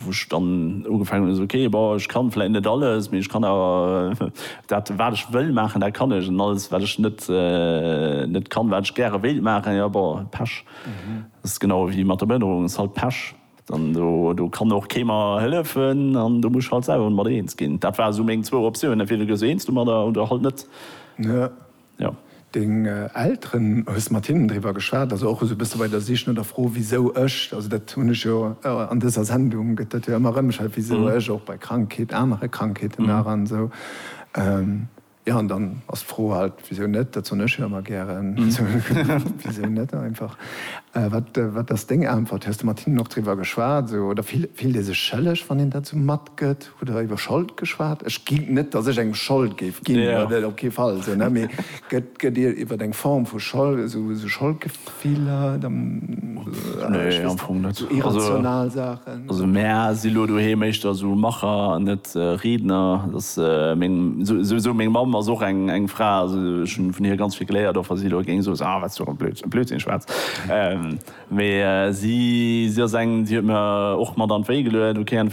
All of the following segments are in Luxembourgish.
wou ech dann ugefaangen hunn, esou, ok, bon, ech kann vläit net alles, mee ech kann awer dat, wat ech wëll maachen, dat kann ech, an alles, wat ech net, net kann, wat ech gäre wéilt maachen, jo, bon, Pech. Dat ass genau ewéi mat der Behënnerung, ass halt Pech. Dann, do, do kann och kee mer hëllefen an do muss ech halt selwer mat eens ginn. Dat ware sou meng zwou Optiounen, entweder gees du eens domadder oder halt net. jo. Deng Elteren, hues de mat hinnen driwwer geschwat, also och esou e bësse bei der Sich no der Fro wisou ech, also dat hunn ech jo an dëser Sendung gëtt dat jo ëmmer erëm gestellt, wisou ech och bei Krankheet, anere Krankheeten nach an esou, jo an dann ass d'Fro halt, wisou net, dat soen ech jo ëmmer gären, wisou net einfach. Wat wat ass deng Äntwert? Hues de mat hinnen och driwwer geschwat esou oder fillt ee sech schëlleg wann een dat esou matgëtt? Hutt der iwwer Schold geschwat? Ech ginn, net datt ech engem Schold géif ginn, dat op kee Fall, esou, ne, mee gëtt, gëtt Dir iwwer eng Form vu Schold, esou, esou Scholdgefiller, ech weess net, esou irrational Saachen? Also mär si lo doheem éischter esou Macher an net Riedner. Et ass meng, souwisou meng Mamm ass och eng, eng Fra, also ech hunn vun hir ganz vill geléiert, och wa si elo géing soen, ah, wat s du och e Blödsinn schwätz. Mee si si ass eng, déi huet mir och mat an d'Wéi geluet, ok an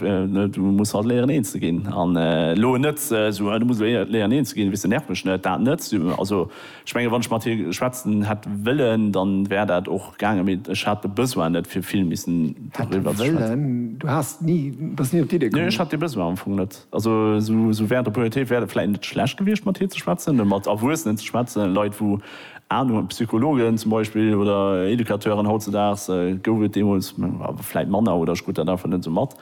du muss halt léieren een ze ginn an elo net esou, du muss léieren een ze ginn, weess de, nerv mech net, dat net. Also ech menge wann ech mat hir schwätzen hätt wëllen, dann wär dat och gaangen, mee ech hat de Besoin net fir vill missen doriwwer ze schwätzen. Du bass ni op d'Iddi komm? Nee, ech hat dee Besoin am Fong net. Also sou während der Pubertéit wär et vläit net schlecht gewiescht mat hir ze schwätzen, ne, mat Erwuessenen ze schwätzen, Leit wou Anung hunn, Psychologen zum Beispill oder Educateuren. Hautzedaags gouf et deemools awer vläit manner oder ech krut dat einfach net sou mat.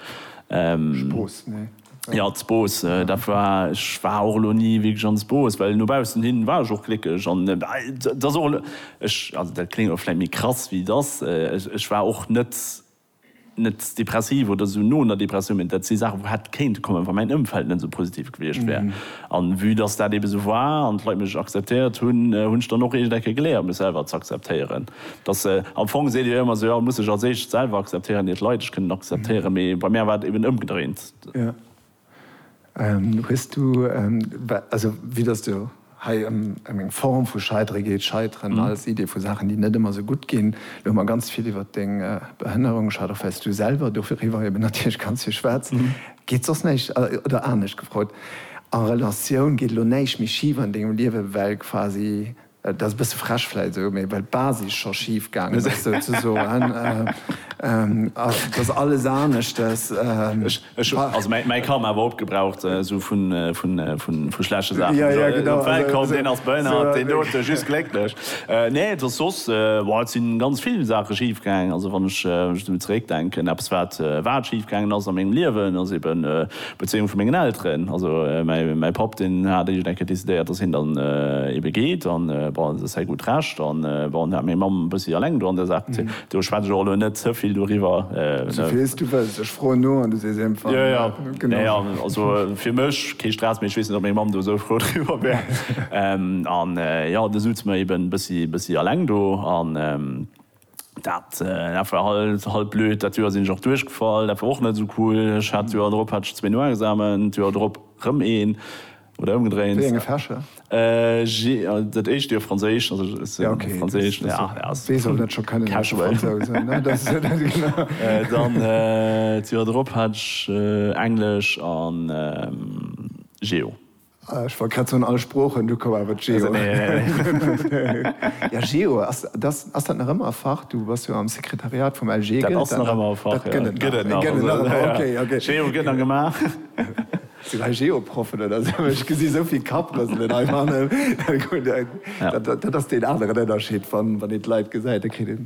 Spooss, nee. Jo, Spooss, dat war, ech war och elo ni wierklech an Spooss, well no baussen hin war ech och gléckeg an et ass och elo, ech, also dat kléngt elo vläit méi krass wéi et ass, ech war och net net depressiv oder esou no einer Depressioun, mä dat si Saachen, wou hätt kéinte kommen, wa mäin Ëmfeld net esou positiv gewiescht wär. An vue dass dat ebe esou war an d'Leit mech akzeptéiert hunn, hunn ech dann och eescht Ecke geléiert, mech selwer z'akzeptéieren. Dass, am Fong seet Dir jo ëmmer sou, jo, muss sech als éischt selwer akzeptéieren, ier d'Leit ech kënnen akzeptéieren, mä bei mär war et eben ëmgedréint. Hues du, also vue dass du hei ëm eng Form vu Scheidere geet, Scheiteren als Idee vu Saachen, déi net ëmmer esou gutt ginn, elo hu mer ganz vill iwwert deng Behënnerung geschwat, och well s du selwer doriwwer eben natierlech ganz vill schwätz. Geet soss näischt, oder anescht gefrot, a Relatioun, geet elo näischt méi schif an dengem Liewe well quasi Et ass e bësse frech vläit esou, mee well d'Basis scho schif gaangen ass souzesoen, ass dass alles aneschtes. Ech hu also mäi Karma awer opgebraucht, esou vu schlechte Saachen. Jo, jo, genau. Wellkomm, deen ass behënnert, deen dote just glécklech. Nee, et ass soss, boah, et si ganz vill Saache schif gaangen. Also wann ech esou zeréckdenken, eppes wat, wat schif gaangen ass a mengem Liewen, ass eben, D'Bezéiung vu mengen Elteren, also mäi Papp deen hat iergend eng Kéier decidéiert, datt hien dann ebe geet an bon, dat ass säi gutt Recht an bon, dat hat meng Mamm e bëssi eleng do an där Saach bezéien. Do schwätz ech och elo net ze vill doriwwer. Souvill s du wëlls, ech froen no an du sees émfall. Jo, jo, nee, also fir mech kee Stress, mee ech weess net, ob meng Mamm do esou frou driwwer wär. An jo, du sutz mer eben e bëssi eleng do an. Dat war halt blöd. Dat Joer sinn ech och duerchgefall. Dat war och net esou cool. Ech hat d'Joer drop hat ech zwee Noexamen, d'Joer drop rëm een oder ëmgedréint. Wéi enge Fächer? Dat éischt Joer Franséisch, also ech hat Franséisch. Wee soll net scho kënnen a Fransouse, ne? Dann d'Joer drop hat ech Englesch a Geo. Ech war grad sou an all Sproochen, du koum awer d'Geo. Ja, Geo, ass dat nach ëmmer e Fach? Du bass jo am Sekretariat vum LG. Dat ass nach ëmmer e Fach, jo. Dat gëtt et nach. Gëtt et nach, ok, ok. Gëtt et nach. Geo gëtt nach gemaach. Sinn hei Geo-Proffen oder esou? Ech gesi sou vill Kapprëselen hei fannen. Dat ass deen aneren Ënnerscheed, wann een d'Leit gesäit, da kritt een.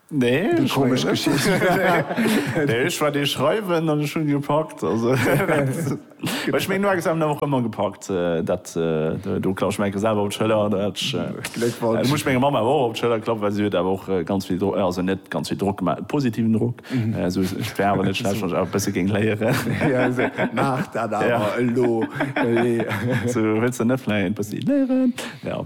Nee, eng komesch Geschicht. Nee, ech war dee schreiwen an ech hunn gepackt. Also ech meng no Examen awer och ëmmer gepackt. Dat do klappe ech meng Enke selwer op d'Schëller. Dat muss ech menger Mamm awer och op d'Schëller klappen, well si huet awer och ganz vill Drock, also net ganz vill Drock, mä positiven Drock. Esou ech wär awer net schlecht, wann ech awer e bësse géing léieren. Maach dat awer elo. Wëlls de net vläicht e bëssi léieren? Jo.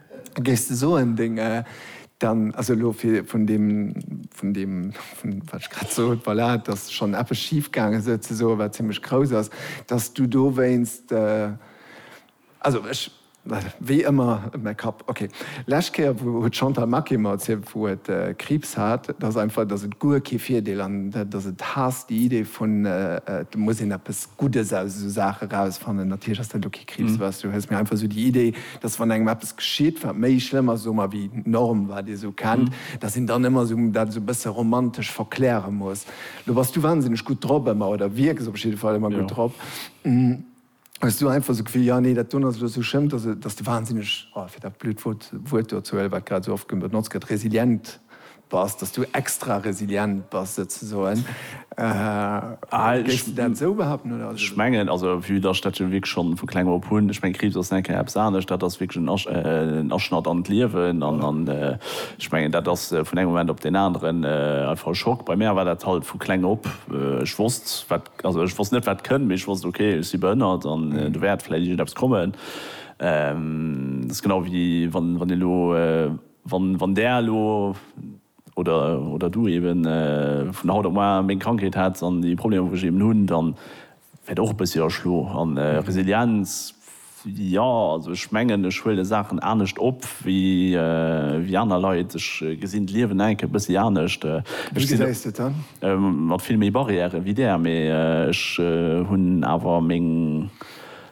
Géifs de soen, deng, dann, also elo fir vun deem, vun deem, vun wat ech grad sot, voilà, dass schonn eppes schif gaange sou ze soen, wat zimmlech grouss ass, dass du dowéinst, also ech, wéi ëmmer, mäi Kapp, okay. Lescht Kéier wou huet d'Chantal Maquet mer erzielt, wou et Kriibs hat, dass einfach, dass et guer kee Virdeel an dass et haasst déi Idee vun, et muss een eppes Guddes aus esou Saache rausfannen. Natierlech ass dat elo kee Kriibs, weißt du, hues, mä einfach esou déi Idee, dass wann engem eppes geschitt, wat méi schlëmm ass, soe mer, wéi d'Norm, wat ee sou kennt, dass een dann ëmmer sou dat sou bësse romantesch verkläre muss. Lo bass du wansinneg gutt drop ëmmer, oder wierks op jidde Fall ëmmer gutt drop. Hues du einfach sou d'Gefill, jo, nee, dat doen ass elo sou schlëmm, dass dass de wansinneg, oh, fir dat blöd Wuert do ze huelen, wat grad sou oft benotzt gëtt, resilient Bass, dass du extra resilient bass souzesoen. Géifs de dat esou behaupten oder? Ech mengen, also vue dass ech dat jo wierklech schonn vu kleng op hunn, ech mengen Kriibs ass nèt keng eppes anescht, dat ass wierklech en Aschnatt an d'Liewen an ech mengen dat ass vun engem Moment op deen aneren einfach e Schock. Bei mär war dat halt vu kleng op, ech wosst wat, also ech wosst net wat kënnt, mee ech wosst ok ech si behënnert an do wäert vläit iergendeppes kommen. Dat ass genau wéi wann dir elo. Wann Där elo, oder Du eben, vun haut op muar meng Krankheet hätts an déi Problemer wou ech eben hunn, dann wäert och e bëssi erschlo. An Resilienz, jo also ech mengen ech huele Saachen anescht op wéi aner Leit. Ech gesinn d'Liewen enk e bëssi anescht. Ech sinn mat vill méi Barrièren wéi Där, mee ech hunn awer meng.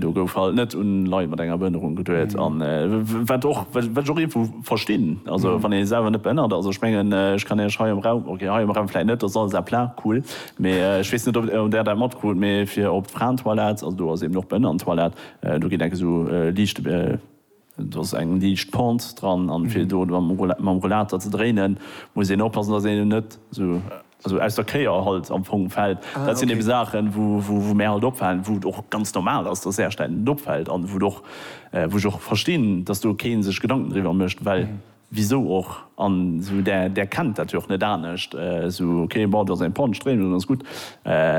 Do gouf halt net un Leit mat enger Behënnerung geduet an wat och wat ech och iergendwou verstinn, also wann ee selwer net behënnert ass, ech mengen ech kann Iech hei am Raum, okay hei am Raum vläit net, dat ass alles à plat, cool, mee ech weess net ob Där dat matkrut, mee fir op d'Fraentoilette, also do ass eben och Behënnertentoilette, do geet enk esou liicht. Do ass eng liicht Pente dran an fir do mam Rollater ze dréinen muss een oppassen dass een net esou aus der Kéier halt am Fong fält. Dat sinn eben Saachen wou mär halt opfalen, wou et och ganz normal ass dass äercht engem et opfält an wou ech och verstinn dass do keen sech Gedanken driwwer mécht well Wisou och? An esou där, där kennt dat jo och net anescht, esou ok, bon, do ass eng Panne, Stréimung, dann ass gutt.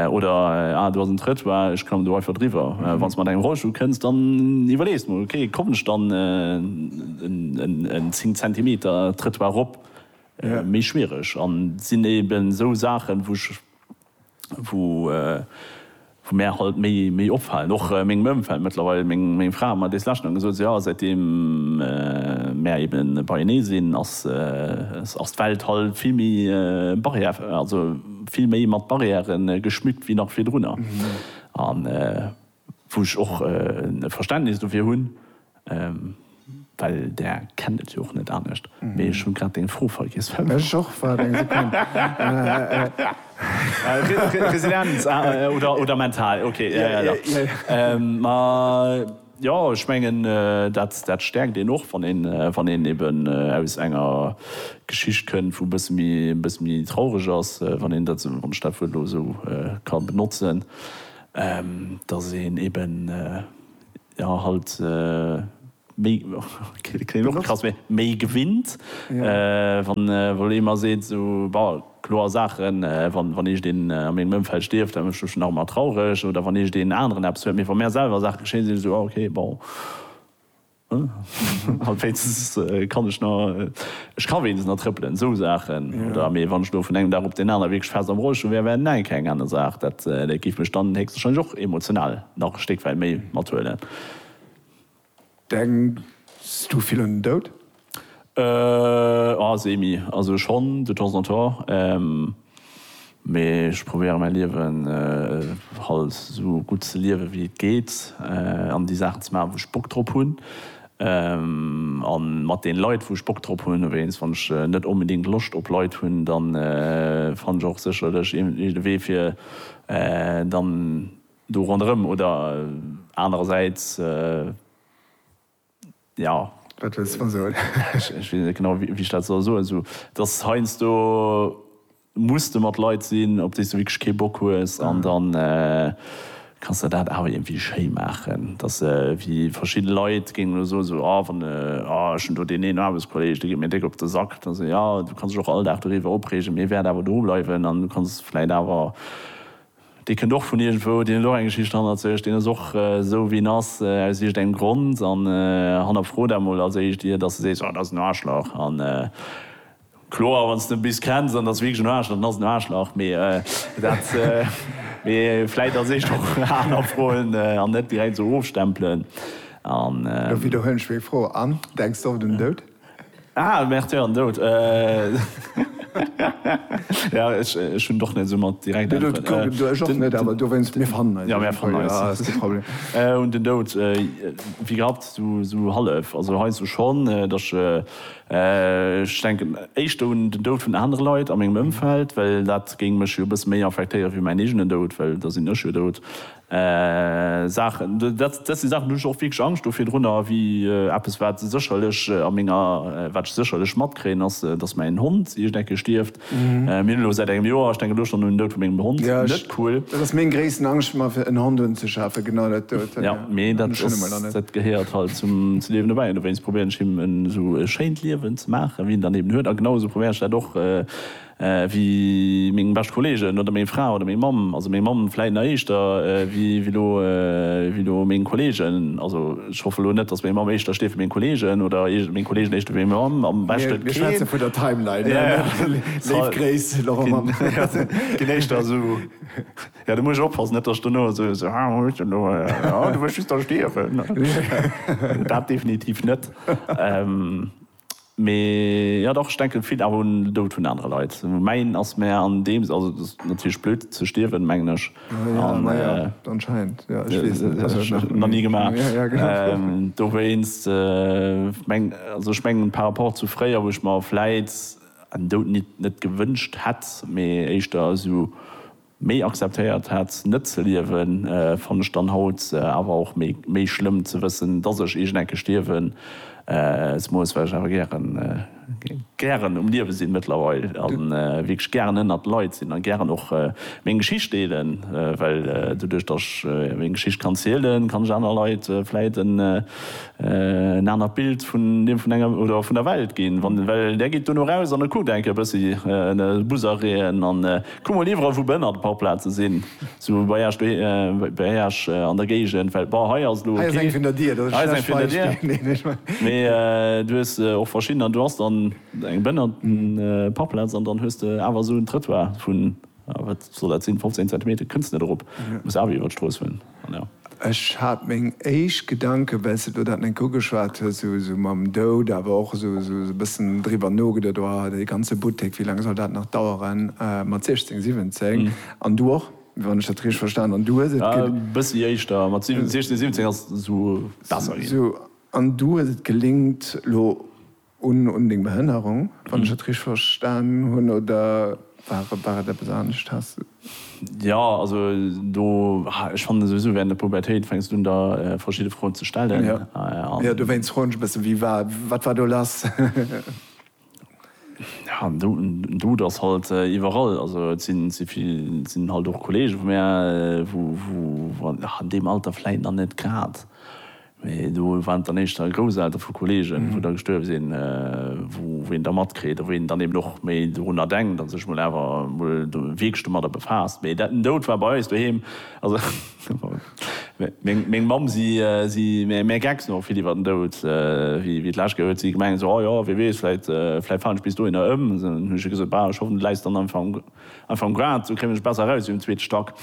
Oder ah, do ass en Trëttoir, ech kommen do einfach driwwer. Wann s de mat engem Rollstull kënns, dann iwwerlees mol, ok, kommen ech dann en 10 Zentimeter Trëttoir erop? Méi schwiereg. An sinn eben esou Saachen, wou ech. wou mär halt méi offalen, och mengem Ëmfeld mëttlerweil, meng Fra huet mer dees lescht nach gesot, sou jo, säitdeem mär ebe beienee sinn, ass d'Welt halt vill méi barrière, also vill méi mat Barrièren geschmückt wéi nach virdrunner. Wou ech och e Verständnis dofir hunn, well Der kennt et jo och net anescht. Mee ech hu grad deng Fro vergiess. Ech och, waart eng Sekonn. Resilienz oder mental, ok. Ma jo, ech mengen, dat stäerkt een och, wann een eben aus enger Geschicht kënnt, wou e bësse méi traureg ass, wann ech dat Wuert elo esou ka benotzen. dass een eben jo halt méi klingt och krass mee méi gewinnt wann wann ee mer seet esou bon kloer Saachen wann wann eescht een a mengem Ëmfeld stierft dat mécht mech dann och emmer traureg oder wann eescht een aneren eppes huet mee wa mär selwer Saache geschéien sinn ech esou ah ok bon. An wéinstens kann ech nach, ech ka wéinstens nach trëppelen, esou Saachen. Oder, mee wann ech elo vun engem Dag op deen anere wierklech fest am Rollstull wär, wär näin, keng aner Saach. Dat géif mech dann héchstwahrscheinlech och emotional nach e Stéck wäit méi mathuelen. Denks du vill un den Doud? Semi. Also schonn, de temps en temps. Mee ech probéieren mäi Liewen halt esou gutt ze liewen wéi et geet an déi Saachen ze maachen wou ech Bock drop hunn an mat den Leit wou ech Bock drop hunn. Dowéinst wann ech net onbedéngt Loscht op Leit hunn dann fann ech och sécherlech iergendwéi de Wee fir dann do ronderëm oder anerersäits. Jo. Wat wëlls de mer soen? Ech weess net genau, wéi ech dat soll soen. Esou, dass heiansdo muss de mat Leit sinn, op déi s du wierklech kee Bock hues. An da kanns de dat awer iergendwéi schéi maachen. Dass se wéi verschidde Leit géingen elo soen, esou, ah, wann, ah, ech hunn do deen een Aarbechtskolleeg, dee geet mir déck op de Sack. Da sot, jo, du kanns dech och all Dag doriwwer opreegen, mee e wäert awer do bleiwen an du kanns vläicht awer. Dee kënnt och vun iergendwou, deen huet och eng Geschicht hannert sech, deen ass och esou wéi en ass aus iergendengem Grond. An hannerfro dat mol als éischt, ier datt s de sees, oh dat ass en Aarschlach. An kloer, wann s de e bis kenns an et ass wierklech en Aarschlach, dann ass et en Aarschlach. Mee dat, mee vläit als éischt och hannerfroen an net direkt esou ofstempelen. An. Elo widderhuelen ech meng Fro, An, denks de och un den Doud? Ah, Märtyr an Doud. Ja, ech hunn och net esou mat direkt Äntweren. Ech och net, awer dowéinst, mir fannen eis. Jo, mir fannen eis. Ass kee Problem. Un den Doud, wéi gehabt, esou hallef. Also heiansdo schonn, datt ech denken éischter un den Doud vun anere Leit a mengem Ëmfeld, well dat géing mech jo e bësse méi affektéieren, wéi mäin eegenen Doud, well da sinn ech jo dout. Saachen, dat si Saachen, do hunn ech och wierklech Angscht do virdrunner, wéi eppes, wat sécherlech a menger, wat ech sécherlech matkréien, ass, datt mäin Hond iergend eng Kéier stierft. Mir hunn elo säit engem Joer, ech denken elo schonn un den Doud vu mengem Hond, net cool. Dat ass meng gréissten Angscht, mer fir en Hond unzeschafen, genau dat dout. Jo, mee dat ass, dat gehéiert halt zum Liewen dobäi an dowéinst probéieren ech him en esou schéint Liewen ze maachen, wéi en dann eben huet a genau esou probéieren ech dat och, ewéi meng bescht Kollegen oder meng Fra oder meng Mamm, also meng Mamm vläit nach éischter ewéi lo, ewéi lo meng Kollegen, also ech hoffe lo net, dass meng Mamm éischter steet ewéi meng Kollegen oder meng Kollegen éischter ewéi meng Mamm, am beschte Mir schwätze vun der Timeline, léif Gréiss Laurent Mamm. Ginn éischter esou, jo do muss ech oppassen, net dass ech dono esou, esou, ah huet jo lo, ah du wëlls just da stierwen, dat definitiv net. Mee jo dach, ech denken vill awer un den Doud vun anere Leit. Mäin ass mär an deem Sënn, also et ass natierlech blöd ze stierwen, mengen ech, nach ni gemaach, dowéinst mengen also ech mengen par rapport zu fréier, wou ech mer vläit en Doud net gewënscht hätt, mee éischter esou Méi akzeptéiert hat net ze liewen fann ech dann haut awer och méi schlëmm ze wëssen dass ech iergend eng Kéier stierwen se muss, well ech awer gären gären um Liewe sinn mëttlerweil a wierklech gären ënnert Leit sinn a gären och meng Geschicht deelen, well doduerch dass ech meng Geschicht kann zielen kann ech aner Leit vläit en anert Bild vun dem vun enger oder vun der Welt ginn, well där geet duerno raus an e kuckt eng Kéier e bëssi Busereen an. Kuck mol iwwerall wou behënnerte Parkplaze sinn, sou bei Esch, bei Esch an der Géigend, well bon hei ass elo, hei ass eng vun der Dier, dat ass e schlecht Beispill, mee du hues och verschidden an du has dann eng behënnerte Parkplaz an dann hues de awer esou en Trëttoir vun, wat soll dat sinn, 15 Zentimeter kënns net erop, muss awer iwwer d'Strooss huelen. Ech hat meng éischt Gedanken, well s de do dat net eng ugeschwat hues, esou esou mam Doud, awer och esou esou e bëssen driwwer nogeduet, oh, dee ganze Buttek, wéi laang soll dat nach daueren mat 16, 17? An du och, wann ech dat richteg verstan hunn, du hues et. E bëssi éischter, mat 16, 17 ass esou besser ginn. Esou, an du hues et gelingt, elo Un deng Behënnerung, wann ech et richteg verstan hunn, oder war et eppes anescht? Has de. Jo, also do, ech fannen souwisou während der Pubertéit fänks du un der verschidde Froen ze stellen an. Jo, dowéinst froen ech e bëssen, wéi war, wat war do lass? Jo, en Dout ass halt iwwerall, also et si vill, et sinn halt och Kollege vu mär, wou an deem Alter vläit nach net grad. Mee do waren et dann éischter Grousseltere vu Kolleegen, wou da gestuerwe sinn, wou een da matkritt a wou een dann eben och méi dorunner denkt a sech mol awer mol wierklech domadder befaasst. Mee dat, den Doud war bei eis doheem, also meng Mamm, si si mär Gecks no vill iwwer den Doud, wéi wéi et lasscht geet huet si gemengt esou, oh jo, wee weess, vläit vläit falen ech bis dohinner ëm. Hunn ech hir gesot, bah, ech hoffen, du läis dann einfach am. Einfach um Grad, sou kréien ech besser eraus wéi um zweete Stack.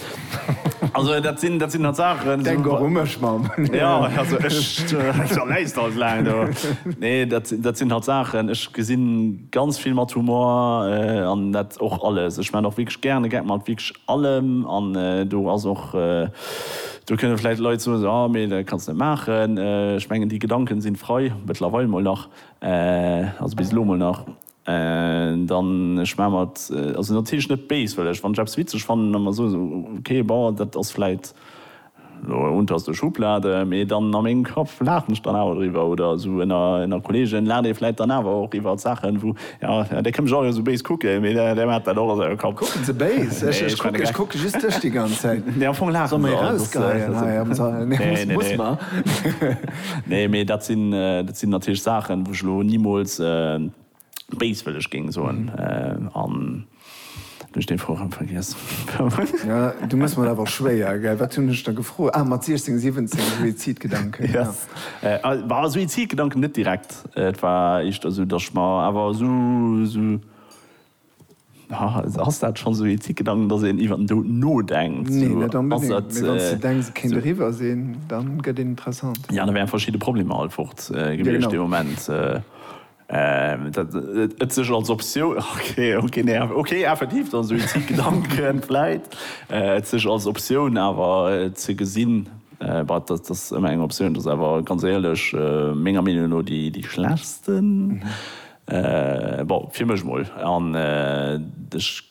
Also dat sinn, dat sinn halt Saachen. Denk och u mech, Mamm. Jo, also ech, da läis de halt laang do. Nee, dat, dat sinn halt Saachen, ech gesi ganz vill mat Humor an dat och alles. Ech maachen och wierklech gären e Gag mat wierklech allem an do ass och, do kënne vläicht Leit soen, esou, ah, mee dat kanns net maachen. Ech mengen, déi Gedanken sinn frei, mëttlerweil mol nach, also bis elo mol nach. Dann, ech maache mer et also natierlech net béis, well ech, wann ech eppes witzeg fannen, da mer soen, okay, bon, dat ass vläit elo unterste Schublade, mee dann a mengem Kapp laachen ech dann awer driwwer. Oder esou ënner Kolleegen laacht ee vläit dann awer och iwwert Saachen, wou, jo, dee kënnt mech och elo esou béis kucken, mee dee maacht dat och a sengem Kapp. Kucken se béis? Ech kucke just dech déi ganz Zäit. Nee, am Fong laache se. Soe mer erausgeheien hei am Sall? Nee, muss mer. Nee, mee dat sinn, dat sinn natierlech Saachen, wou ech elo nimools béiswëlleg géing soen. An elo hunn ech dee Froe rëm vergiess. Ja, du mëss mer awer schwéier, gell? Wat hunn ech der gefrot? Ah, mat 16, 17, Suizidgedanken, jo. Bah, Suizidgedanken net direkt. Et war éischter esou, datt ech mer awer esou, esou Ass dat schonn esou Ethikgedanken, datt een iwwer den Doud nodenkt? Nee, net onbedéngt, mee wann s de denks, et kéint eriwwer sinn, da gëtt een interessant. Jo, da wären verschidde Problemer halt fort gewiescht dee Moment. Et sech als Optioun, ok, nee, ok, effektiv dann esou Ethikgedanken, vläit, et sech als Optioun awer ze gesinn, bah, dat ass ëmmer eng Optioun, dat ass awer ganz éierlech menger Meenung no déi schlechsten. Bon, fir mech mol. An ech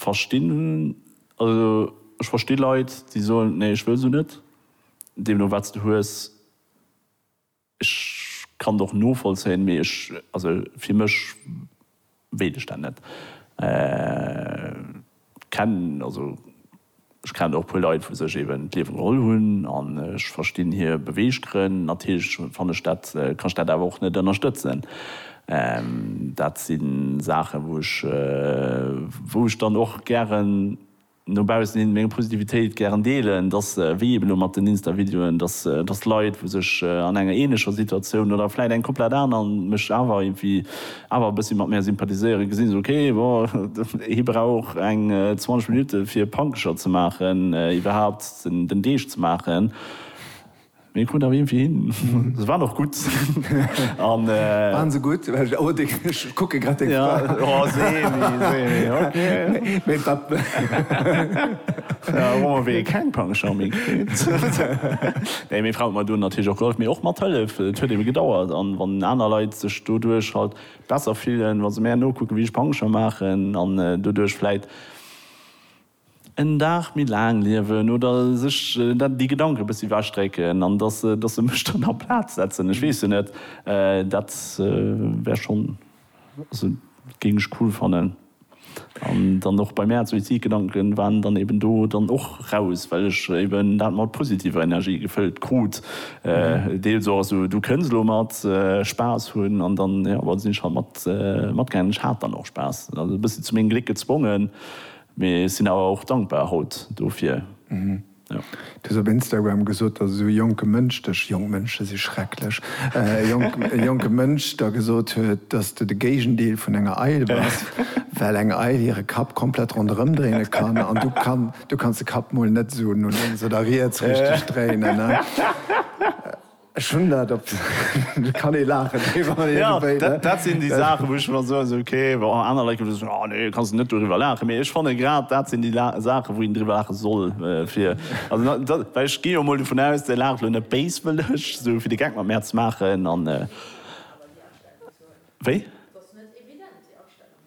verstinn, also ech versti Leit, déi soen, nee, ech wëll se net. Deemno wat s de hues, ech kann et och novollzéien, mee ech, also fir mech wéilt ech dat net. Kenn, also. Ech kennen och e puer Leit, wou sech eben d'Liewe geholl hunn, an ech verstinn hir Beweeggrënn. Natierlech kann ech dat awer och net ënnerstëtzen. Dat si Saachen, wou ech, wou ech dann och gären no baussen hin meng Positivitéit gären deelen, dass, wéi eben elo mat den Insta-Videoen, dass, dass Leit, wou sech an enger ähnlecher Situatioun oder vläicht eng komplett aner, mech awer irgendwie, awer e bëssi mat mär sympathiséieren, gesinn se, ok, bon, hie brauch eng 20 Minutte fir Pankecher ze maachen, iwwerhaapt den Deeg ze maachen, mee hie krut awer iergendwéi hin. Se waren och gutt. Waren se gutt? Oh, ech kucke grad deng Fra. Jo, semi, semi, ok. Mee wat? Hu mer wéi keng Pankecher méi kritt. Nee, meng Fra huet mer do natierlech och gehollef, mee och mathëllef, et huet ebe gedauert, an wann aner Leit sech. doduerch halt besser fillen wa se mär nokucken wéi ech Pancher maachen an doduerch vläit en Dag méi laang liewen oder sech déi Gedanken e bëssi ewech drécken an dass se dass se mech dann a Plaz setzen. Ech weess jo net, dat wär schonn also géing ech cool fannen. An dann och bei mäer Suizidgedanken waren dann eben do dann och raus, well ech eben dat mat positiver Energie gefëllt krut, deels och esou, du kënns elo mat Spaass hunn an dann, jo, well sinn ech halt mat matgaangen. Ech hat dann och Spaass, also e bëssi zu mengem Gléck gezwongen, mee sinn awer och dankbar haut dofir. Du hues op Instagram gesot, datt esou e jonke Mënsch dech, jonk Mënsche si schrecklech, e jonke Mënsch der gesot huet, datt s du de Géigendeel vun enger Eil bass, well eng Eil hire Kapp komplett ronderëm dréine kann an du kanns de Kapp mol net esou no lénks oder riets richteg dréinen. Ech hunn dat op de, kann ee laachen driwwer iergendwéi, ne? Dat sinn déi Saachen, wou ech mer soen, esou ok, bon, aner Leit gëtt soen, oh nee, kanns de net doriwwer laachen. Mee ech fanne grad dat sinn déi Saachen, wou een driwwer laache soll, fir, also dat, well ech ginn jo emol dovun aus, Dir laacht elo net béiswëlleg, esou fir de Geck mat mär ze maachen an, wéi?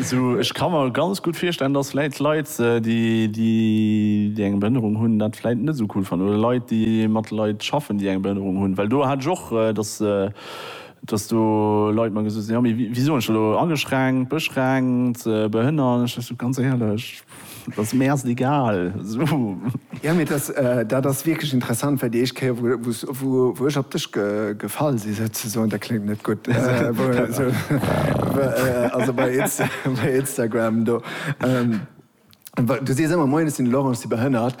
Sou, ech ka mer ganz gutt virstellen, dass vläit Leit, déi eng Behënnerung hunn, dat vläit net esou cool fannen, oder Leit, déi mat Leit schaffen, déi eng Behënnerung hunn. Well do hat ech och, dass, dass do Leit mer gesot hunn, jo, mee wéi soen ech dat elo, ageschränkt, beschränkt, behënnert? Ech sot, ganz éierlech. Dass mir ass et egal sou. Jo mee dass dat ass wierklech interessant well déi éischt Kéier wou wou ech op dech gefall si souzesoen, dat kléngt net gutt also bei Insta bei Instagram do du sees ëmmer moien ech sinn de Laurent ech si behënnert.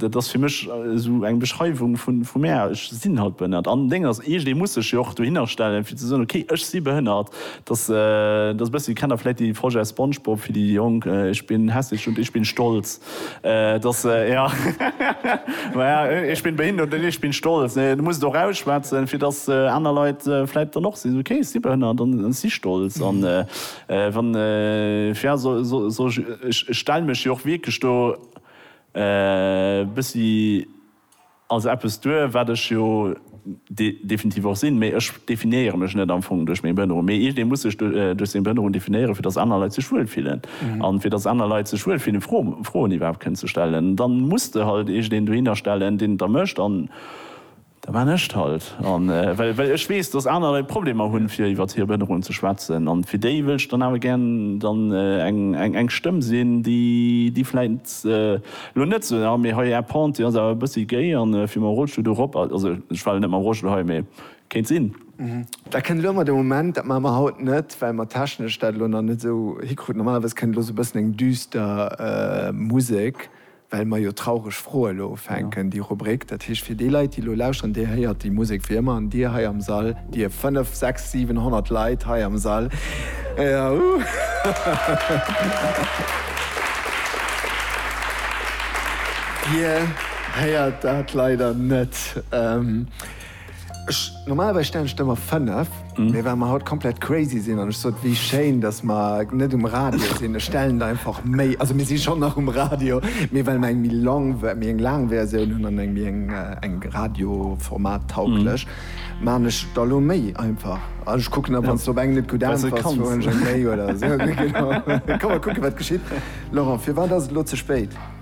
Dat ass fir mech esou eng Beschreiwung vu mär, ech sinn halt behënnert. An Déng ass, iergendee muss sech jo och dohinner stellen, fir ze soen, ok, ech si behënnert. Dass e bëssi, kennt Der vläit déi Folge aus Spongebob, fir déi Jonk, Ich bin hässlich und ich bin stolz. Dass, jo, ma ja, ich bin behindert und ich bin stolz. Du muss et och ausschwätzen, fir dass aner Leit vläit dann och sinn, ok, ech si behënnert an ech si stolz. An wann, fir, ja, soll ech, ech stelle mech jo och wierklech do, E bëssi als eppes duer, wat ech jo definitiv och sinn, mee ech definéiere mech net am Fong duerch meng Behënnerung, mee iergendee muss sech duerch seng Behënnerung definéieren, fir datt aner Leit sech wuel fillen. An fir datt aner Leit sech wuel fillen, Froen iwwerhaapt kënnen ze stellen, dann muss de halt iergendeen dohinner stellen, deen et da mécht. Da man ech et halt. An well well ech weess, dass aner Leit Problemer hunn, fir iwwert hir Behënnerung ze schwätzen, an fir déi wëllt ech dann awer gär dann eng eng eng Stëmm sinn, déi déi vläit elo net soen, ah mee hei Är Pente, déi ass awer e bëssi géi, an fir mam Rollstull do erop, also ech war elo net mam Rollstull hei, mee kéint sinn. Dat kënnt elo ëmmer de Moment. Dat maache mer haut net, well mer technesch dat elo nach net esou hikruten. Normalerweis kënnt elo esou e bëssen eng düster Musek. well mer jo traureg Froe lo ufänken, déi Rubrik. Dat heescht, fir déi Leit, déi elo lauschteren, Dir héiert déi Musek wéi ëmmer. An Dir hei am Sall, Dir fënnef, sechs, siwen, honnert Leit hei am Sall, Dir héiert dat leider net. Ech, normalerweis stellen ech der emmer 5, mee well mer haut komplett crazy sinn an ech sot, wéi schéin, datt mer net um Radio sinn, ech stellen der einfach méi, also mir si schonn nach um Radio, mee well mer eng méi long, méi eng laang Versioun hunn an eng méi eng, eng radioformattauglech, maachen ech der elo méi einfach. An ech kucken da, wann s de op eng net gutt äntwerts, fueren ech eng méi oder esou. Genau, da komme mer kucke wat geschitt. Laurent, firwat ass et elo ze spéit?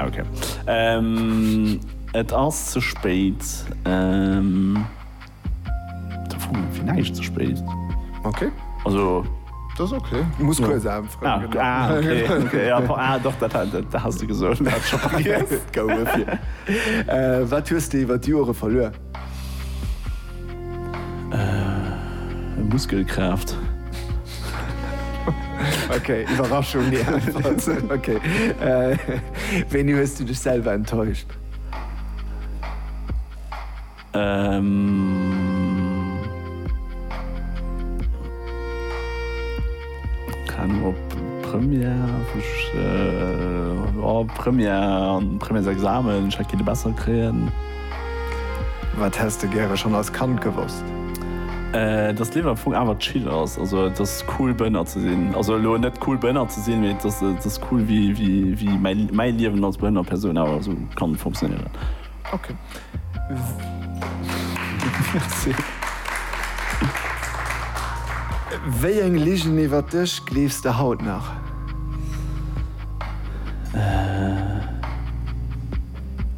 Ok. Et ass ze spéit. Da froe mer fir näischt ze spéit. Ok. Also. Dat ass ok. Du muss kuerz anfroen. Ah, okay. Ah, doch, dat has de gesot. Wat hues de iwwer d'Jore verluer? Muskelkraaft. Ok, Iwwerraschung, déi Äntwert. Ok. Wéini hues du dech selwer enttäuscht? Keng Anung, op Première, Première, Premièresexamen, ech hätt kenne besser kréien. Wat häss de gäre schonn als Kand gewosst? Dass d'Liewen am Fong awer chill ass, also et ass cool Bënner ze sinn, also elo net cool Bënner ze sinn, mee et ass et ass cool wéi wéi wéi mäi mäi Liewen als behënnert Persoun awer esou kann funktionéieren. Ok. Merci. Wéi eng Ligen iwwert dech gleefs de haut nach?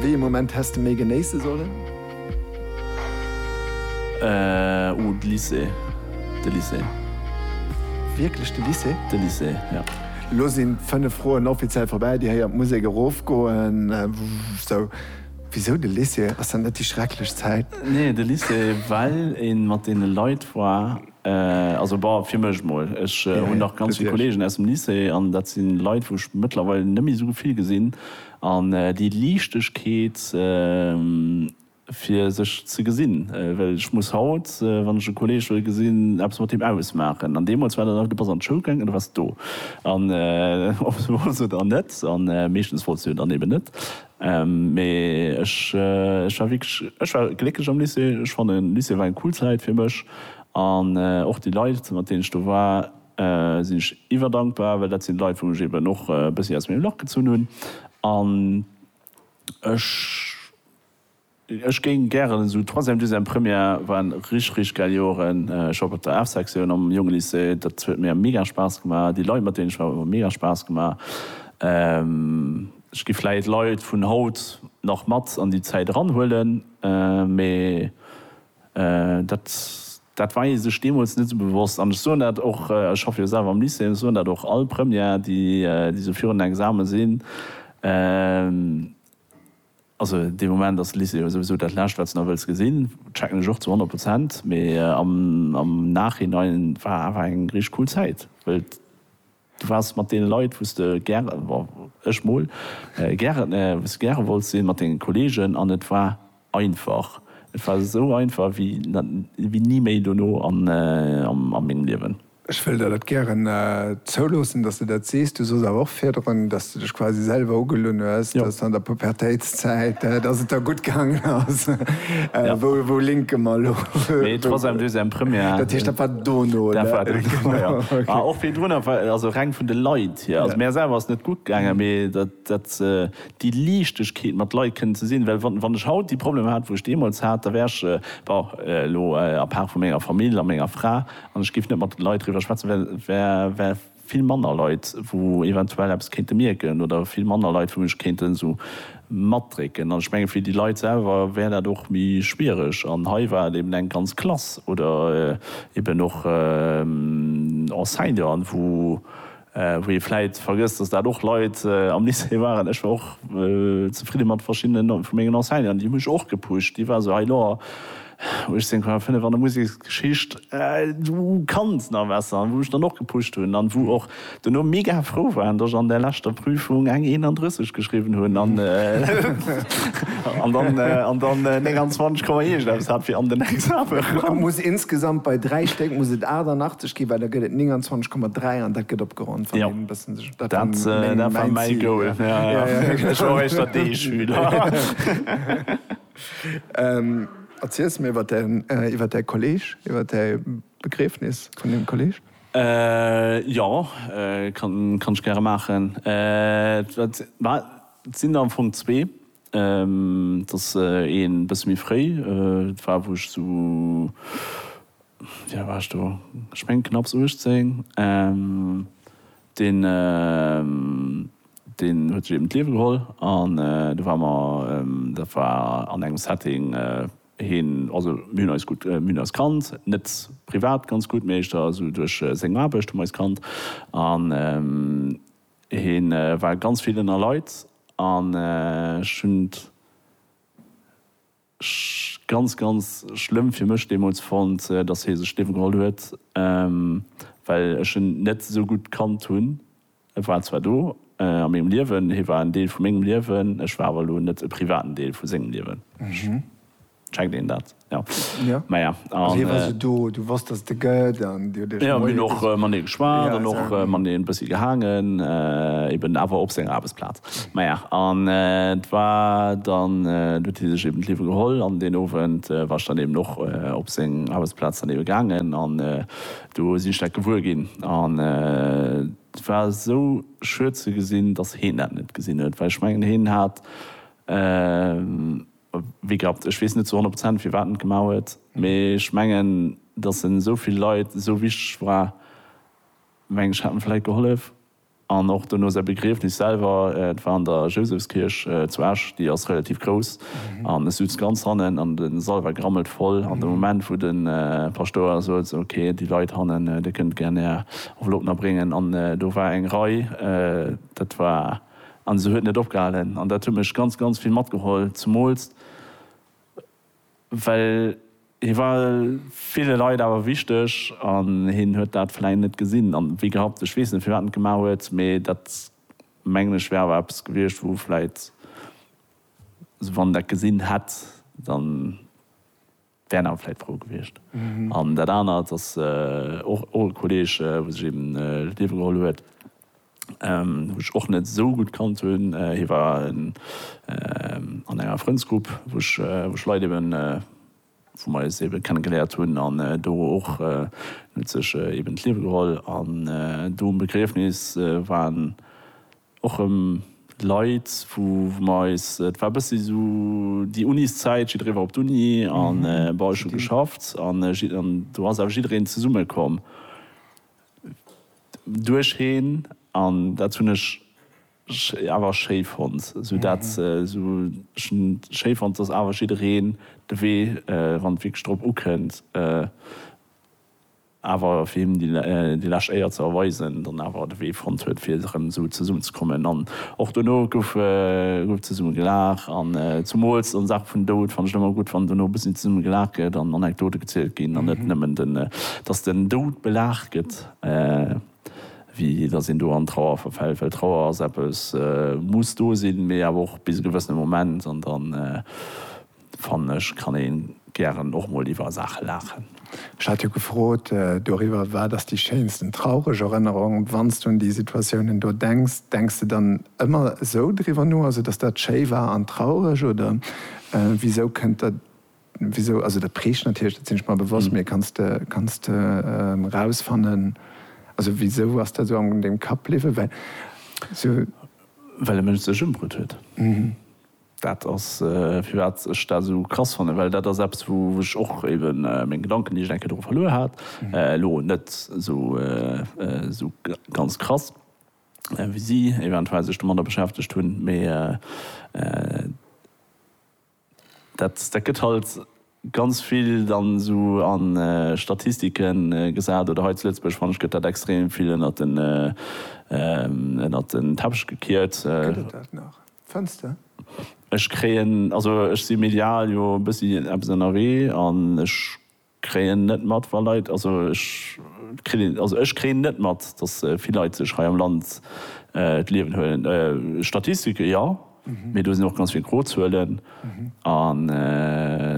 Wéi ee Moment häss de méi genéisse sollen? Oh, de Lycée. De Lycée. Wierklech de Lycée? De Lycée, ja. Elo sinn d'fënnef Froen offiziell vorbäi. Dir héiert d'Musek erofgoen. Sou, wisou de Lycée? Ass dat net déi schrecklech Zäit? Nee, de Lycée, well ee mat deene Leit war. Also bah, fir mech mol. Ech hunn nach ganz vill Kollegen aus dem Lycée an dat si Leit, wou ech mëttlerweil net méi esou vill gesinn. An déi Liichtegkeet, fir sech ze gesinn, well ech muss haut, wann ech e Kolleg wëll gesinn, eppes mat deem ausmaachen. An deemools war dat einfach, du bass an d'Schoul gaangen an du waars do. An ob se wou sinn oder net, a meeschtens wollt se jo dann eben net, Mee ech war wierklech, ech war glécklech am Lycée. Ech fannen, Lycée war eng cool Zäit fir mech. An och déi Leit, mat deenen ech do war, sinn ech iwwerdankbar, well dat sinn d'Leit, wou ech eben och e bëssi aus mengem Lach gezunn hunn. An ech. Ech géing gären esou Troisième, Deuxième, Première waren rich rich gäil Joeren. Ech war och op der Art Sektioun am jonge Lycée, dat huet mir mega Spaass gemaach. Déi Leit mat deenen ech war hu mega Spaass gemaach. Ech gi vläit Leit vun haut nach mat an déi Zäit eran huelen, mee dat dat war ee sech deemools net esou bewosst. An ech soen dat och, ech schaffe jo selwer am Lycée, ech soen dat och all Première déi déi esou virun den Examen sinn, Also dee Moment ass Lycée jo souwisou dat Lescht, wat s de nach wëlls gesinn. Checken ech och zu honnert Prozent. Mee am Nachhinein war awer eng richteg cool Zäit, well du waars mat deene Leit, wou s de gäre, ech mol, gäre wolls sinn, mat denge Kolleegen. An et war einfach. Et war esou einfach wéi ni méi dono a mengem Liewen. Ech wëll der dat gären zouloossen, dass de dat sees. Du sooss awer och virdrun, dass de dech quasi selwer ugelunn hues, dass an der Pubertéitszäit, dass et der gutt gaangen ass. Wou linke mer elo? Nee, troisième, deuxième, première. Dat heescht, dat war dono, oder? Dat war dono, jo. Mä och virdrun, also reng vun de Leit hier. Also mär selwer ass et net gutt gaangen, mee dat. datt déi Liichtegkeet mat Leit kënnt ze sinn, well wann ech haut déi Problemer hätt, wou ech deemools hat, da wär ech, bon, elo a part vu menger Famill a menger Fra, an ech géif net mat de Leit driwwer schwätzen, well wär vill manner Leit, wou eventuell eppes kéinte mierken, oder vill manner Leit, wou mech kéinten esou matdrécken. An ech mengen, fir déi Leit selwer wär dat och méi schwiereg. An hei war et eben eng ganz Klass oder eben och Enseignanten, wou Wou ee vläit vergësst, dass dat och Leit am Lycée waren, ech war och zefridde mat verschiddene vu mengen Enseignanten, déi hu mech och gepusht, déi war esou, Hei lo, 18,5 an der Museksgeschicht, du kanns nach besser. An wou ech dann och gepusht hunn an wou och duerno mega frou waren, dass ech an där leschter Prüfung eng 31 geschriwwen hunn an dann 29 Komma iergendeppes hat fir an den Exame eran. Muss insgesamt bei dräi Stéck muss et 88. Ski well da gëtt et 29,3 an dat gëtt opgeronnt wann een e bëssen sech dat war mäin Goal ech war och éischter dee Schüler. Erziels mir iwwer däi Kolleg, iwwer däi Begriefnis vun deem Kolleg. Jo, kann ech gäre maachen. Et sinn der am Fong zwee. Et ass ee bësse méi fréi. Et war, wou ech esou, wéi al war ech do, ech mengen knapps 18. Deen, deen huet sech eben d'Liewe geholl. An do ware mer, dat war an engem Setting, hien, also mir hunn eis gutt, mir hunn eis kannt, net privat ganz gutt, mee éischter esou duerch seng Aarbecht hu mer eis kannt. An. Hien war ganz vill ënner Leit an ech hunn et ganz, ganz schlëmm fir mech deemools fonnt, dass hie sech d'Liewe geholl huet, well ech en net esou gutt kannt hunn. E war zwar do a mengem Liewen, hie war en Deel vu mengem Liewen, ech war awer elo net e privaten Deel vu sengem Liewen. Checkt een dat? Jo. Jo. Maja, Also hie war an. sou do, du wosst, dass et e gëtt an dir hutt iech Jo, mir hunn och mat hie geschwat Ja, an och sa. mat hie e bëssi gehaangen, eben awer op senger Aarbechtsplaz. Maja, an et war dann, do huet hie sech eben d'Liewe geholl an deen Owend war ech dann eben och op seng Aarbechtsplaz dann ebe gaangen an do sinn ech dat gewuer ginn an et war esou schued ze gesinn, dass heen dat net gesinn huet, well ech mengen, hien hat. Wéi gehabt, ech weess net zu 100 Prozent firwat en et gemaach huet, mee ech mengen, datt en esou vill Leit esou wichteg war, meng ech, hätt en vläit gehollef. An och dono säi Begriefnis selwer, et war an der Jousefskierch zu Esch, déi ass relativ grouss, an ech sutz ganz hannen an de Sall war grammelt voll. An de Moment wou de Paschtouer sot, esou ok, déi Leit hannen, dir kënnt gär är Enveloppen erbréngen, an do war eng Rei, dat war. An se huet net opgehalen. An dat huet mech ganz, ganz vill matgeholl. Zemools well hie war ville Leit awer wichteg an hien huet dat vläicht net gesinn a wéi gehabt. Ech weess net, firwat en et gemaach huet, mee dat, mengen ech, wär awer eppes gewiescht, wou vläicht, wann en dat gesinn hätt, dann. Wären awer vläit frou gewiescht. An dat anert ass och och e Kolleeg, wou sech eben d'Liewe geholl huet, wou ech och net esou gutt kannt hunn. Hie war an enger Frëndsgrupp, wou ech wou ech Leit eben, wou mer eis ebe kenne geléiert hunn an do och. En huet sech eben d'Liewe geholl an do um Begriefnis war en. Och rëm Leit, wou mer eis, et war e bëssi esou déi Uniszäit, jidderee war op d'Uni an bon, ech hu geschafft an do ass awer jiddereen zesummekomm duercheen an dat hunn ech awer schéi fonnt. Esou dat, esou ech hunn schéi fonnt, dass awer jiddereen de Wee, wann et wierklech drop ukënnt, awer fir him déi lescht Éier ze erweisen, dann awer de Wee fonnt huet fir erëm esou zesummen ze kommen an och dono gouf zesumme gelaach an zumools an Saache vun Doud fannt ech et ëmmer gutt wann dono e bëssi zesumme gelaach gëtt an Anekdote gezielt ginn an net nëmmen den dass den Doud belaach gëtt wéi dass een do an Trauer verfält, well Trauer ass eppes muss do sinn mee awer och bis e gewëssene Moment an dann. Fannen ech kann een gären och mol iwwer Saachen laachen. Ech hat jo gefrot doriwwer, wat ass déi schéinsten traureg Erënnerung? Wanns du un déi Situatiounen do denks, denks de dann ëmmer esou driwwer no, also dass dat schéi war an traureg oder wisou kënnt dat, wisou, also dat prägt natierlech, dat sinn ech mer bewosst, mee kanns de, kanns de rausfannen, also wisou ass dat esou an dem Kapp bliwwen? Well. Well e Mënsch sech ëmbruet huet. Dat ass firwat ech dat esou krass fannen, well dat ass eppes wou ech och eben meng Gedanken déi ech enke dru verluer hat, elo net esou ganz krass wéi si eventuell sech domadder beschäftegt hunn, mee dat gëtt halt. ganz vill dann esou a Statistike gesat oder hei zu Lëtzebuerg fanne ech gëtt dat extrem vill ënnert den ënnert den Teppech gekiert. Gëtt et dat nach, fënns de? Ech kréien, also ech si medial jo e bëssi eppes ënnerwee an ech kréien net mat wa Leit, also ech kritt een, also ech kréien net mat, datt vill Leit sech hei am Land d'Liewen huelen. Statistike jo. Mee do sinn och ganz vill gro Zuelen a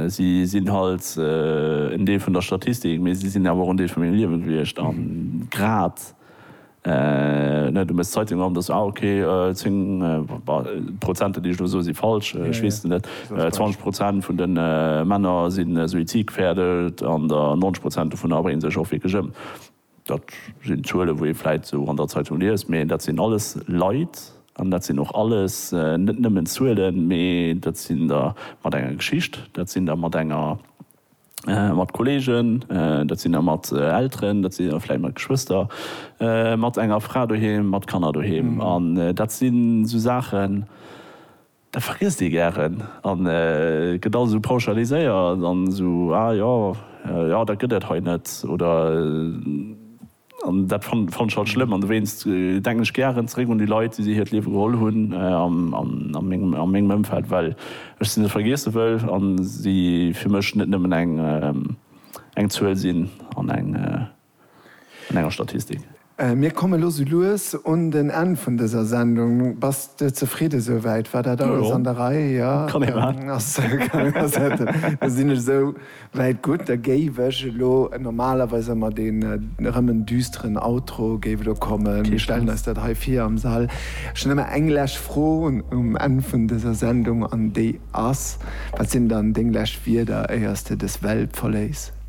si sinn halt en Deel vun der Statistik, mee si sinn awer och en Deel vu mengem Liewe gewiescht. A grad, du méchs d'Zeitung op, da soss du, ah, okay, zéng, d'Prozenter, déi ech elo soe si falsch, ech weess et net, zwanzeg Prozent vun de Männer si suizidgefährdet an der 90 Prozent dovunner bréngen sech och wierklech ëm. Dat sinn Zuele wou ee vläit esou an der Zeitung liest, mee dat sinn alles Leit an dat sinn och alles net nëmmen Zuelen, mee dat sinn der mat enger Geschicht, dat sinn der mat enger mat Kollegen, dat sinn der mat Elteren, dat sinn der vläit mat Geschwëster, mat enger Fra doheem, mat Kanner doheem. An dat sinn esou Saachen. Dat vergiesst ee gären a gëtt alles esou pauschaliséiert an esou, ah jo, jo dat gëtt et hei net oder. An dat fannt ech halt schlëmm an dowéinst denken ech gären zeréck un déi Leit, déi si hiert Liewe geholl hunn a mengem Ëmfeld, well ech se net vergiesse wëll a si fir mech net nëmmen eng Zuel sinn an eng. an enger Statistik. Mir komme lo sou lues un den Enn vun dëser Sendung. Bass de zefridde sou wäit? War dat alles an der Rei? Jo, kann ee maachen. Da sinn ech esou wäit gutt. Da géif ech elo, normalerweis ëmmer deen erëm en düsteren Outro géif elo kommen. Mir stellen eis dat hei vir am Sall. Ech hunn ëmmer eng lescht Fro um Enn vun dëser Sendung an déi ass, Wat sinn dann deng lescht Wierder éiers de dës Welt verléiss?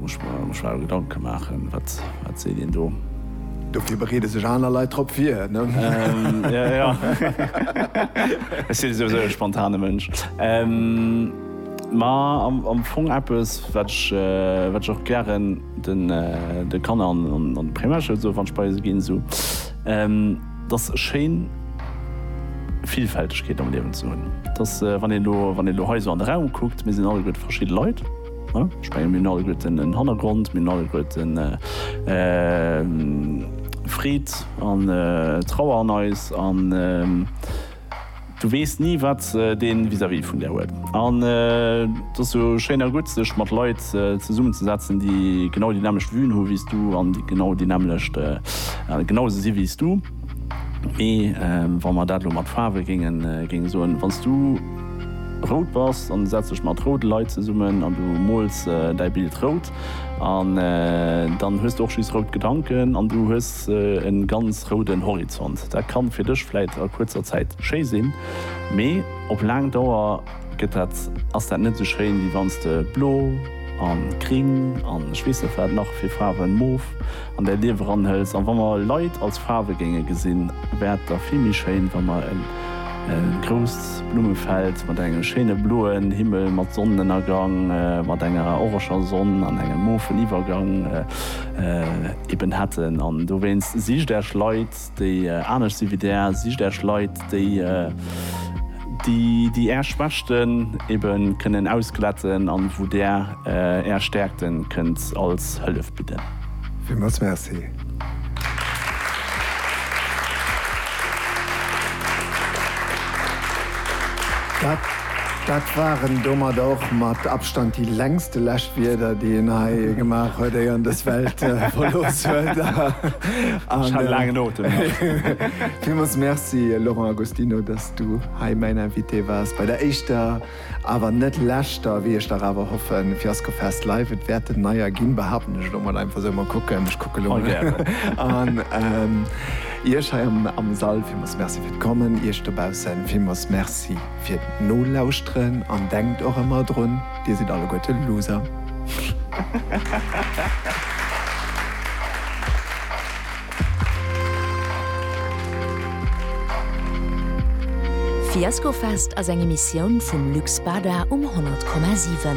Muss ech mer schlau Gedanke maachen, wat seet een do? Dofir bereede sech aner Leit drop vir. Ech sinn souwisou e spontane Mënsch. Ma am Fong eppes, wat ech och gären de Kanner an d'Primärschoul soe wann ech bei se ginn. 't ass schéin Villfältegkeet am Liewen ze hunn. 't ass, wann een elo, wann een elo hei esou an de Raum kuckt, mir sinn alleguerte verschidde Leit, ne? Ech menge mir hunn alleguerten en Hannergrond, mir hunn alleguerten Freed an Trauer an eis an, Du weess ni wat dee vis-à-vis vun der huet. An et ass jo schéin a gutt sech mat Leit zesummen ze setzen déi genau déi nämlecht Vuen hu wéi s du an déi genau déi nämlecht genau esou si wéi s du. Mee wa mer dat elo mat Faarwe géinge soen, wann s du rout bass an du setz dech mat roude Leit zesummen an du mols däi Bild rout, an dann hues de och just rout Gedanken an du hues e ganz rouden Horizont. Dat ka fir dech vläit a kuerzer Zäit schéi sinn, mee op laang Dauer gëtt dat, ass dat net esou schéin, wéi wann s de blo a gring an ech weess net wat nach fir Faarwen, mof, an däi Lief eranhëls. An wa mer Leit als Faarwe géinge gesinn, wär et da vill méi schéin, wa mer e grousst Blummefeld mat engem schéine bloen Himmel, mat Sonnenënnergang, mat enger oreger Sonn an engem mofen Iwwergang eben hätten. An dowéinst, Sicht Äech Leit! déi anescht si wéi Där, sicht Äech Leit, déi déi Är Schwächten ebe kënnen ausglätten an wou Där Är Stäerkten kënnt als Hëllef bidden. Villmools Merci. Dat waren domat och mat Abstand déi längste Läschwierder, déi een hei gemaach huet, éier en dës Welt verlooss huet. Ech hat e laangen Otem nach. Villmools Merci, Laurent Agostino, datt s du hei mäin Invité waars bei der éischter, awer net leschter, wéi ech dach awer hoffen, Fiasco Fest Live. Et wäert en neier ginn, behaapten ech elo mol einfach esou. Mol kucken, ech kucke elo mol. Iech hei am Sall villmools Merci fir d'Kommen. Iech dobaussen villmools Merci. fir d'Nolauschteren an denkt och ëmmer drun, Dir sidd alleguerte Loser. Fiaskofest ass eng Emissioun vum Lux Bada um 100,7.